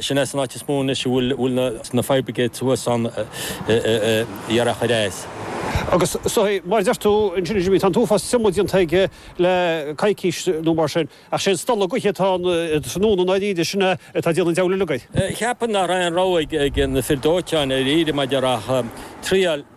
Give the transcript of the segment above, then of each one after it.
Sin é an áit is mó anois a bhfuil na fire brigades thuas ann iar a' choir a's. Agus mar a deir tú ansin, Jimí, tá an t-uafás triomaigh déanta aige le coicís nó mar sin, ach sé an stolladh gaoithe atá ann inniu i ndáiríre, sin é atá ag déanamh an diabhail uilig air. Cheapfainn nach raibh aon rogha ag na fir dóiteáin i ndáiríre maidir ach triail.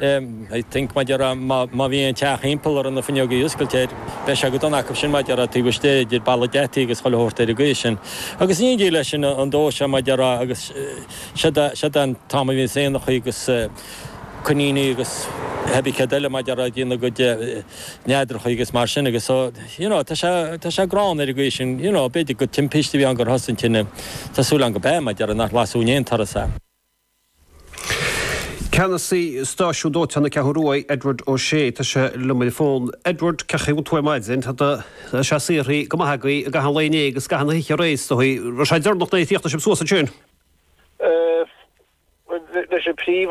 I think maidir le má bhíonn teach thimpeall ar na fuinneoga oscailte air, beidh sé go dona acu sin maidir le taobh istigh, idir balla geataí agus chuile shórt ar an gcaoi sin. Agus ní dóigh leis sin an dóigh seo maidir le agus siod an t-am a bhíonns éanachaí agus coiníní agus hé bí céard eile maidir le dhéanamh a gcuid neadrachaí agus mar sin agus so you know tá sé tá sé gránna ar an gcaoi sin you know b'fhéidir gur timpiste a bhí ann gur thosaigh an tine tá súil agam gurb ea maidir le nach lasú in aon turas é. Ceannasaí Stáisiún Dóiteáin na Ceathrún Ruaidh, Edward O'Shea, tá sé liom ar an bhfón. Edward, cén chaoi a bhfuil tú ar maidin? Tá do, tá sé saothraithe go maith agaibh i gcaitheamh an lae inné agus i gcaitheamh na hoíche aréir is dóigh. Raibh sé deireanach nuair a d'fhág sibh suas ansin? Bhuel, leis an príomh.